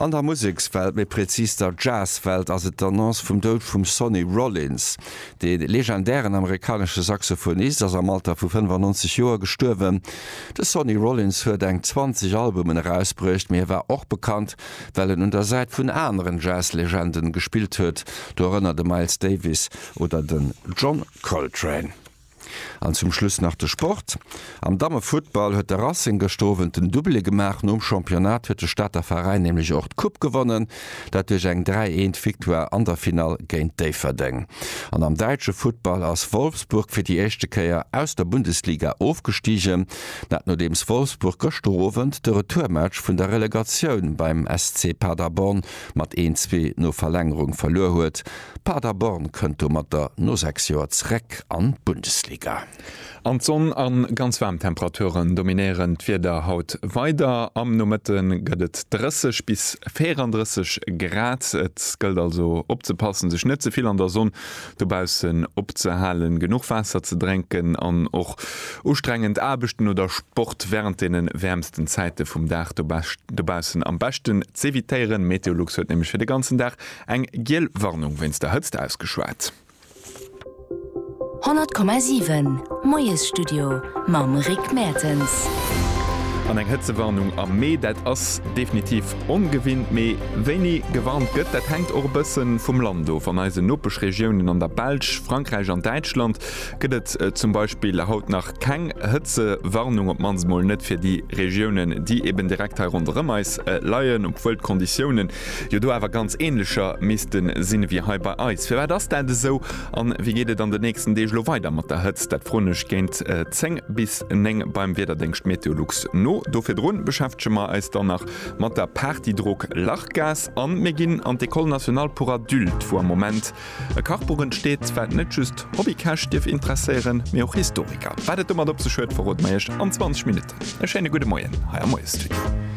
An der Musekswelt, méi präzis der Jazzwelt, ass et d'Annonce vum Doud vum Sonny Rollins. De legendären amerikanesche Saxophonist ass am Alter vu 95 Joer gestuerwen. De Sonny Rollins huet eng 20 Albumen erausbruecht, mee hie war och bekannt, well en un der Säit vun aneren Jazzlegenden gespillt huet, dorënner de Miles Davis oder den John Coltrane. An zum Schluss nach de Sport, Am Dammefuttball huet de Racing gëschter Owend den Doublé gemaach. Nom Championnat huet de Stater Veräin nämlech och d'Coupe gewonnen, dat duerch eng 3, 1 Victoire an der Finall géint Déifferdeng. An am däitsche Futtball ass Wolfsburg fir déi éischte Kéier aus der Bundesliga ofgestigen, dat nodeems Wolfsburg gëschter Owend de Retourmatch vun der Relegatioun beim SC Paderborn mat een, zwee no Verlängerung verluer huet. Paderborn kënnt domatter no 6 Joer zeréck an d'Bundesliga. An d'Sonn a ganz waarm Temperaturen dominéieren d'Wieder haut weider. Am Nomëtte gëtt et 30 bis 34 Grad, et gëllt also opzepassen, sech net ze vill an der Sonn dobaussen opzehalen, genuch Waasser ze drénken an och ustrengend Aarbechten oder Sport wärend deene wäermsten Zäite vum Dag dobaussen am beschten z'evitéieren. Meteolux huet nämlech fir de ganzen Dag eng giel Warnung wéinst der Hëtzt ausgeschwat. 100,7 Moiesstudio mam Rick Mertens. An eng Hëtzewarnung am Mee, dat ass definitiv Ongewinnt, mee wéini gewarnt gëtt, dat hänkt och e bësse vum Land of. An eisen Nopeschregiounen an der Belsch, Frankräich an Däitschland gëtt et zum Beispill haut nach keng Hëtzewarnung, op d'mannst mol net fir déi Regiounen, déi eben direkt hei ronderëm eis leien, obwuel d'Konditiounen jo do awer ganz änlecher misste sinn, ewéi hei bei eis. Firwat ass dat esou? A wéi geet et an den nächsten Deeg elo weider mat der Hëtzt? Dat froen ech géint 10 bis. 9 beim Wiederdéngscht Meteolux no. Do virdrun beschäftege mer eis dann nach mat der Party Drock Lachgas an mir ginn an d'Ecole Nationale pour Adultes, wou am Moment e Kachbuch entsteet, wat net just Hobbykäch dierf interesséieren, mee och Historiker. Wat et domat op sech huet, verroden mer iech an 20 Minutten. E schéine gudde Moien hei am Moiestudio.